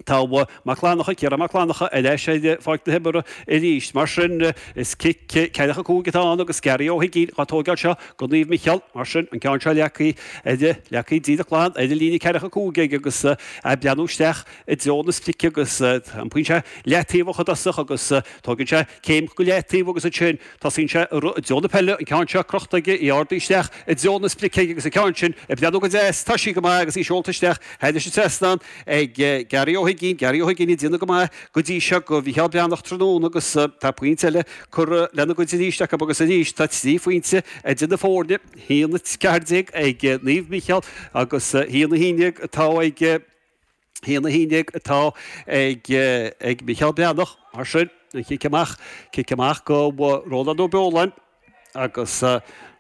Tá Mac Fhlannacha, Ciarán Mac Fhlannacha, ar ais ar pháirc na himeartha arís. Mar sin, is cic ceathracha 5 atá ann agus Gary Ó hUiginn á tógáil seo go Naomh Micheál. Mar sin, an ceann seo leagtha ar leagtha díreach glan ar an líne ceathracha 5 aige agus ag breathnú isteach i dtreo na sprice agus an pointe leataobh i dtosach agus tógann sé céim go leataobh agus ansin Tosaíonn sé ag rith i dtreo na peile, an ceann seo crochta aige, í ardaithe isteach i dtreo na sprice aige agus an ceann sin ag breathnú go deas, tá sí go maith agus í seolta isteach, thairis an trasnán ag Gary Ó hUiginn, Gary Ó hUiginn ag déanamh go maith go dtí seo go Mhicheál Breathnach tráthnóna agus tá pointe eile curtha lena gcuid arís acu agus arís tá trí phointe idir na foirne, 1-14 ag Naomh Micheál agus 1-11 atá ag. haon a haon déag atá ag Micheál Breathnach. Mar sin, an chic amach, cic amach go Rónán Ó Beoláin agus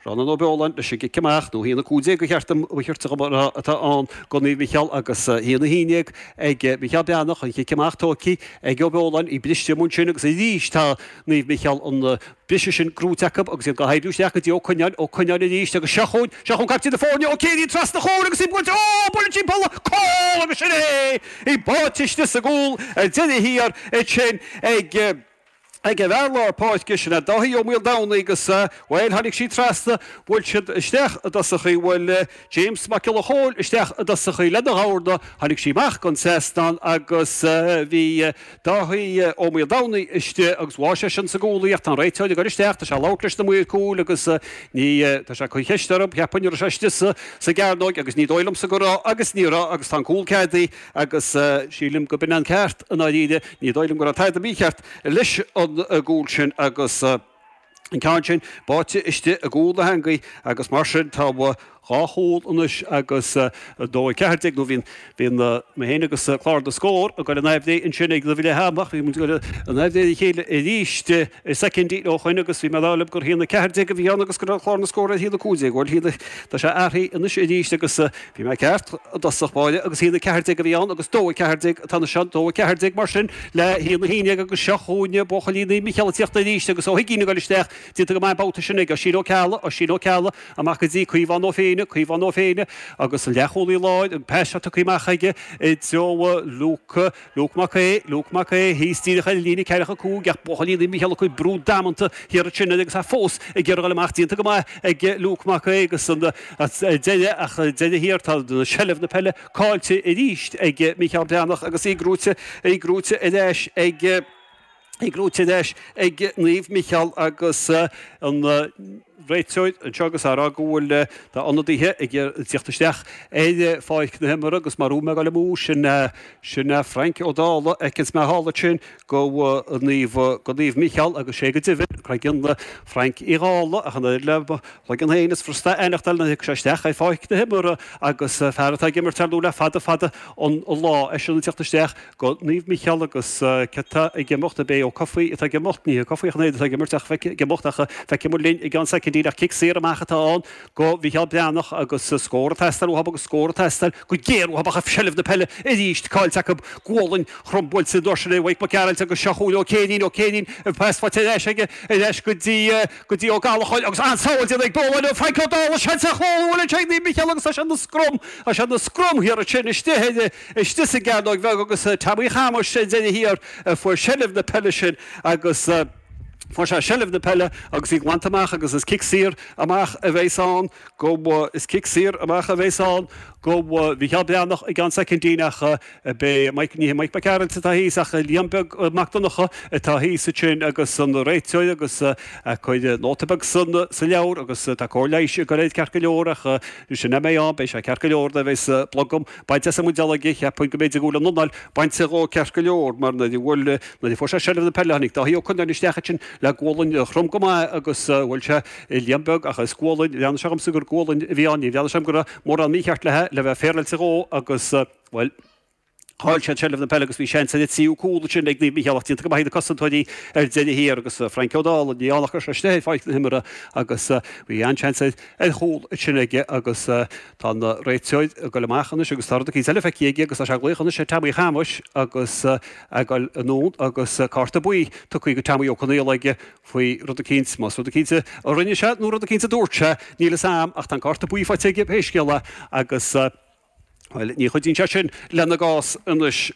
Rónán Ó Beoláin leis an gcic amach, nó haon a cúig déag, ba cheart dom a cheirt a chur mar atá ann, go Naomh Micheál agus haon a haon déag ag Micheál Breathnach, an chic amach tógtha ag Ó Beoláin, í briste amuigh ansin agus arís tá Naomh Micheál an Briseadh sin gnóite acu agus iad dhá hoibriú isteach go dtí Ó Cuinneáin, Ó Cuinneáin arís agus seo chugainn, seo chugainn caiptín na foirne, Ó Céirín trasna chugainn agus í buailte, ó, buaileadh timpeall a cúl agus sin é! Í báite istigh sa gcúl ar deireadh thiar, iad sin ag, ag an bhfear lár páirce, sin é Dáithí Ó Maoldomhnaigh agus, bhuel, tháinig sí trasna, bhuail siad isteach i dtosach í, bhuail James Mac Giolla Chóill isteach i dtosach í lena dhorn, tháinig sí amach den seastán agus bhí, Dáithí Ó Maoldomhnaigh istigh agus bháigh sé sin sa gcúl í ach tá an réiteoir ag goil isteach, tá sé ag labhairt leis na maoir cúil agus ní, tá sé ag cur ceist orthu, cheapfainn an raibh sé istigh sa gcearnóig agus ní dóigh liomsa go raibh agus ní raibh agus tá an cúl ceadaithe agus sílim go b'in an ceart i ndáiríre, ní dóigh liom go raibh tada mícheart leis an gcúl sin agus. an ceann sin báite istigh i gcúl na heangaí agus mar sin tá dhá chúl anois agus 2-14 nó bhí bhí mé féin agus Clár na Scór ag goil in aimhréidh ansin ag Luimh Liath amach bhí muid ag goil in aimhréidh a chéile arís i soicindí ó shoin agus bhí mé dar liom gur a haon a ceathair déag a bhí ann agus go raibh Clár na Scór ar a haon a cúig déag bhuel tá sé athraithe anois arís agus Bhí mé ceart. I dtosach báire agus haon 14 a bhí ann agus dó 14 atá anois ann, dó 14 mar sin le haon 11 agus seo chugainn buachaillí Naomh Micheál ag tíocht arís agus Ó hUiginn ag goil isteach déanta go maith an babhta sin ag Oisín Ó Ceallaigh, Oisín Ó Ceallaigh amach go dtí Caomhán Ó Féinneadh, Caomhán Ó Féinneadh agus an leathchúlaí láir, an pas seo tugtha amach aige i dtreo Luke. Luke Mac Aodh, Luke Mac Aodh, thíos díreach ar líne ceathracha a cúig ach buachaillí Naomh Micheál ag cur brú damanta thiar ansin agus é fós ag iarraidh dul amach, déanta go maith ag Luke Mac Aodh agus ar deireadh ach ar deireadh thiar, tá seilbh na peile caillte arís ag Micheál Breathnach agus í gnóite, í gnóite ar ais ag. Ag breith ar deis ag Naomh Micheál agus an réiteoir anseo agus é ag rá go bhfuil ionadaithe ag iarraidh teacht isteach ar pháirc na himeartha agus mara bhfuil mé ag dul amú sin sin Frank Ó Dálaigh a fheiceanns mé thall ansin go Naomh go Naomh Micheál agus is é go deimhin cloigeann Frank Uí Dhálaigh ach an oiread le mo chloigeann féin is éasca a aithneachtáil nuair a thiocfaidh sé isteach ar pháirc na himeartha agus fear atá ag imirt ar nó le fada fada an lá é sin ag teacht isteach go Naomh Micheál agus cé atá ag imeacht, ab é Ó Cofaigh atá ag imeacht, ní hé Cofaigh an fhaid atá ag imirt ach feic ag imeacht ach feicfimid linn i gceann soicindí nach cic saor amach atá ann go Mhicheál Breathnach agus scór ag teastáil uathab agus scór ag teastáil go géar uathab ach seilbh na peile arís caillte acu, gualainn throm buailte arís ar Mhaidhc Mac Gearailt agus seo chugainn Ó Céirín, Ó Céirín agus pas faighte ar ais aige, ar ais go dtí, go dtí Ó Gallachóir agus an-sábháil déanta ag Dónal ó Frank Ó Dálaigh, seans ar chúl ansin ag Naomh Micheál agus tá siad ina scrum, tá siad ina scrum thiar ansin istigh i Istigh sa gcearnóig bheag agus is é Teaimí Shéamuis sa deireadh thiar a fuair seilbh na peile sin agus fuair sé seilbh na peile agus í glanta amach agus is cic saor amach a bheas ann go, is cic saor amach a bheas ann go Mhicheál Breathnach i gceann soicindín agus ab é Mike, ní hé Mike Mac Gearailt atá thíos ach Liam Beag Mac Donnacha atá thíos ansin agus an réiteoir ag cur nóta beag san, sa leabhar agus tá cóir leighis ag a leithéid ceart go leor ach cheapfainn, beidh sé ceart go leor, tá sé ag blogam. Baint as an mbuidéal aige, cheapfainn go mb'fhéidir go bhfuil an anáil bainte dhó ceart go leor mar nuair a bhuail, nuair a fuair sé seilbh na peile tháinig Dáithí Ó Conaire isteach ansin le gualainn throm go maith agus bhuail sé Liam Beag ach is gualainn, bhreathnaigh sé dhomsa gur gualainn a bhí ann, níor bhreathnaigh sé dhom go raibh mórán mícheart le, le bheith féaráilte dhó agus, bhuel, chaill siad seilbh na peile agus bhí seans ar an tríú cúl ansin ag Naomh Mícheál ach déanta go maith ag na cosantóirí ar deireadh thiar agus Frank Ó Dálaigh, ní ann ach go raibh sé istigh ar pháirc na himeartha agus bhí an-seans ar chúl ansin aige agus. Tá an réiteoir ag goil amach anois agus tá rud eicínt eile feicthe aige agus tá sé ag glaoch anois ar Teaimí Shéamuis agus é ag goil anonn agus cárta buí tugtha go Teaimí Ó Conaola aige faoi rud eicínt. Más rud eicínt a rinne sé nó rud eicínt a dúirt sé, níl fhios a'am ach tá an cárta buí faighte aige pé scéal é agus, bhuel, ní chuidíonn sé sin lena gcás anois.